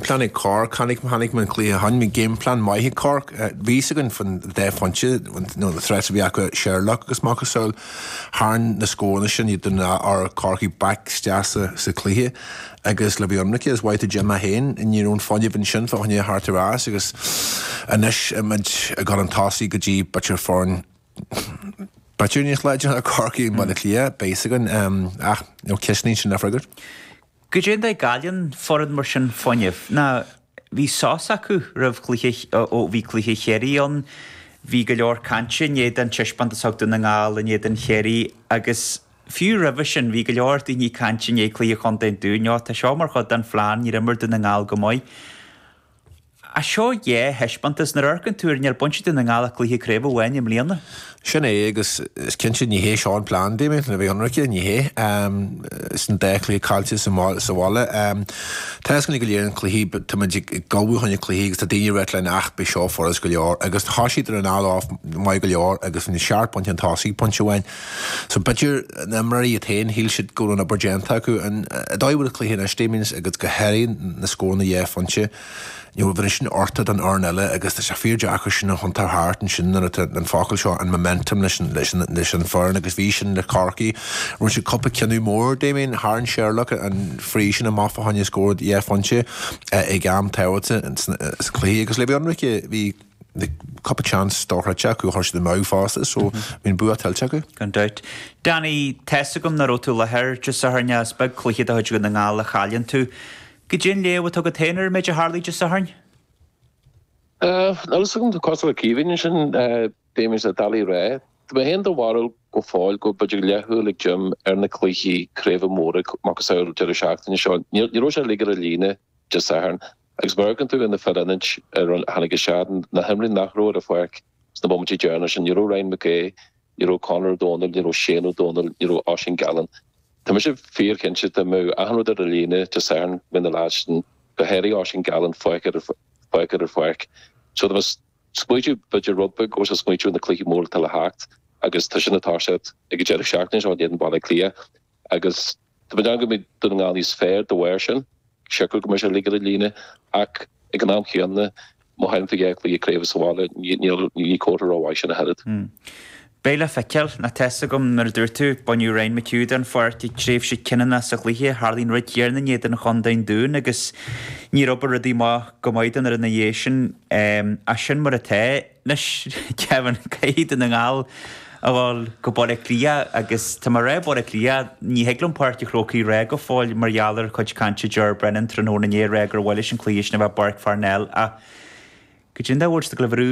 Pláinig Cork, Tháinig tháinig an cluiche, tháinig game plan maith ag Cork. Bhí fhios againn fá na dá phointe, nó na threats a bhí acu Sherlock agus macasamhail. Tharraing na scóranna sin iad den rath ar Corcaigh back isteach sa sa cluiche agus le bheith ionraice, is mhaith do Jim é féin, ní raibh an fuinneamh ansin fá choinne teacht ar ais agus anois muid ag gabháil chun tosaigh go dtí b'fhéidir foireann b'fhéidir níos láidre ná Corcaigh i mBaile Átha Cliath, beidh fhios againn ach, you know, ceist níl sin le freagairt. Goidé an dóigh a gcailleann foireann mar sin fuinneamh. Ná bhí sos acu roimh chluiche, ó bhí cluiche Chiarraí ann, bhí go leor cainte i ndiaidh an taispeántas a thug Dún na nGall in éadan Chiarraí agus fiú roimhe sin bhí go leor daoine ag caint i ndiaidh cluiche Chontae an Dúin, 'Ó, tá seo mar chuid den phlean, níor imir Dún na nGall go maith. Ach seo dhá thaispeántas, nuair a amharcann tú air, níor bhain Dún na nGall ach cluiche craoibhe amháin i mbliana. Sin é, agus is cinnte ní hé seo an plean, Damien, le bheith ionraice, ní hé. Sin dhá chluiche caillte sa bhaile, táscáin go léir an chluichí, tá muid ag ullmhú fá choinne cluichí agus tá daoine ag rá linn, ach beidh seo furast go leor, agus tá siad ar an anáil maith go leor agus seacht bpointe chun tosaigh pointe amháin. So b'fhéidir, na himreoirí iad féin, shíl siad go raibh an obair déanta acu. An dóigh a bhfuil an cluiche anois, Damien, agus go háirithe na scóranna dhá phointe, ní raibh an sin orthu don fhoireann eile agus tá sé fíor deacair sin a thiontú thart ansin nuair atá an focal seo, an momentum, leis an foireann agus bhí sin le Corcaigh. Rinne siad cúpla cinneadh mór, Damien, tharraing Sherlock an free sin amach fá choinne scór dhá phointe ag am tábhachtach sa chluiche agus le bheith ionraice, bhí cúpla chance dhá phointe acu, chuir siad amú fosta so bhí an bua tuillte acu. Gan dabht. Danny, tá's agam nach raibh tú i láthair Dé Sathairn, is beag cluiche de chuid Dhún na nGall a chailleann tú. Goidé an léamh atá agat féin ar an méid a tharlaigh Dé Sathairn? Níl a fhios agam tá cosúil le Caoimhín ansin, bíonn sé doiligh a rá. Tá mé féin den bharúil go fóill go b'fhéidir leathshúil ag Jim ar na cluichí craoibhe móra, macasamhail deireadh seachtaine seo. Ní raibh sé uilig ar an líne Dé Sathairn Agus má amharcann tú ar na fir ionaid a tháinig isteach, na himreoirí nach raibh ar an pháirc sna bomaití deireanacha sin, ní raibh Ryan Mac Aoidh, ní raibh Conor Ó Domhnaill, ní raibh Shane Ó Domhnaill, ní raibh Oisín Gallen. Tá mise fíorchinnte dá mbeadh achan rud ar an líne Dé Sathairn go mbeadh na lads sin, go háirithe Oisín Gallen, fágtha ar an pháirc. So, tá mé ag smaoitiú b'fhéidir rud beag go raibh sé ag smaoitiú ar na cluichí móra atá le theacht agus tá sin ag toiseacht ag an deireadh seachtaine seo in éadan Bhaile Átha Cliath. agus tá mé ag déanamh go mbeidh Dún na nGall níos fearr dá bharr sin. Siocair go mbeidh sé uilig ar an líne, ach ag an am chéanna, má chailleann tú dhá chluiche craoibhe sa bhaile, ní comhartha rómhaith sin ach oiread. Beidh le feiceáil. Now, tá's agam mar a dúirt tú, baineadh Ryan McHugh den pháirc ag tréimhse cinniúnach sa chluiche, tharla an rud céanna in éadan Chontae an Dúin agus níor oibrigh rudaí amach go maith don fhoireann ina dhiaidh sin. Ach sin mar atá. Anois, caithfidh, caithfidh Dún na nGall a dhul go Baile Átha Cliath, agus tá mé ag rá Baile Átha Cliath. Ní thig liom Páirc a' Chrócaigh a rá go fóill mar gheall ar chuid cainte Ger Brennan tráthnóna inné ag rá gur mhaith leis an cluiche sin a bheith i bPáirc Pharnell ach goidé an dóigh a dtig leo brú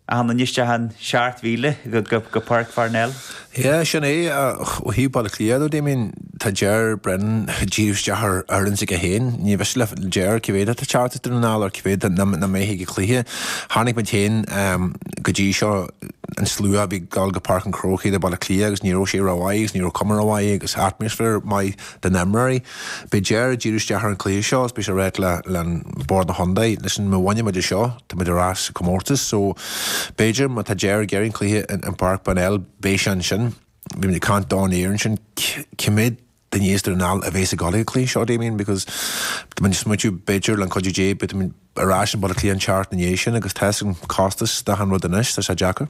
achan duine isteach an seacht mhíle go Páirc Pharnell. Sea, sin é, ach ó thaobh Baile Átha Cliath de, Damien, tá Ger Brennan ag díriú isteach ar fhoireann s'aige féin. Ní miste le Ger cé mhéad atá ag teacht as Dún na nGall nó cé mhéad nach mbeidh ag an cluiche. Chonaic muid féin go dtí seo, an slua a bhí ag dul go Páirc an Chrócaigh do Bhaile Átha Cliath agus ní raibh sé rómhaith agus ní raibh cuma rómhaith agus atmaisféar maith. do na himreoirí. Beidh Ger ag díriú isteach ar an gcluiche seo is beidh sé ag ráit le Bord na Chontae, listen, má bhaineann muid é seo, tá muid ar ais sa comórtas so b'fhéidir má tá Ger ag iarraidh an cluiche in Páirc Parnell, beidh sé ansin, bhí muid ag caint den aer ansin, cé mhéad duine as Dún na nGall a bhéas ag dul ag an cluiche seo, Damien, because tá muid ag smaoitiú b'fhéidir le an cuidiú Dé, beidh muid. ar ais i mBaile Átha Cliath an tseachtain ina dhiaidh sin agus tá 'fhios agam costas d'achan rud anois, tá sé deacair.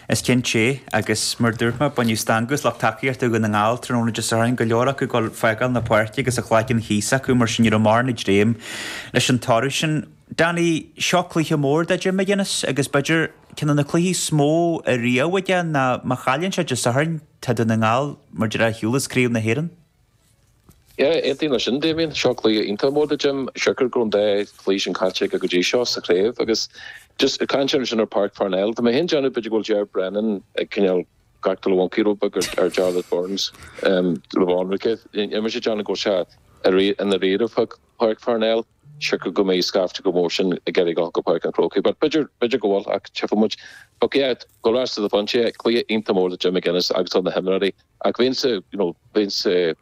Is cinnte, agus mar dúirt mé, baineadh stangadh as lucht tacaíochta Dhún na nGall tráthnóna Dé Sathairn, go leor acu ag dul ag fágáil na páirce agus a gcloigeann thíos acu mar sin ní raibh mórán ag dréim leis an toradh sin. Danny, seo cluiche mór do Jim McGuinness agus b'fhéidir ceann de na cluichí is mó ariamh aige ná má chailleann sé Dé Sathairn tá Dún na nGall mar a déarfá ar shiúl as Craobh na hÉireann. Yeah, aontaím leis sin Damien, seo cluiche iontach mór do Jim, siocair go raibh an dá chluiche sin caillte aige go dtí seo sa chraobh agus just ag caint ansin ar Páirc Pharnell, tá mé fhéin ag déanamh b'fhéidir go bhfuil Ger Brennan ag cineál ag actáil an mhoncaí rud beag ar Jarlath Burns le bheith ionraic, níl mé ag déanamh go bhfuil sé i ndáiríre fá Páirc Pharnell. siocair go mbeidh scaifte chomh mór sin ag iarraidh a dhul go Páirc an Chrócaigh. But b'fhéidir, b'fhéidir go bhfuil ach tchífidh muid. But yeah, go raibh 'fhios a'd, bhain sé cluiche iontach mór do Jim McGuinness agus do na himreoirí ach bheinnse, you know, bheinnse,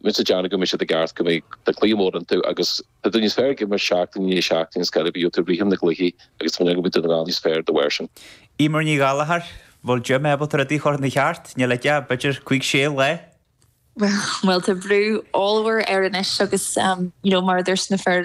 bheinnse ag déanamh go mbeidh siad i gceart, go mbeidh cluiche mór iontu agus tá tú níos fearr ag imirt seachtain i ndiaidh seachtaine go háirid má bhíonn tú ag baint na gcluichí agus tá mé ag déanamh go mbeidh Dún na nGall níos fearr dá bharr sin. Emer Ní Ghallachair, Bhfuil Jim ábalta rudaí a chur ina cheart? Níl aige, b'fhéidir, cúig, sé lá. bhuel tá brú ollmhór air anois agus you know mar a dúirt na fir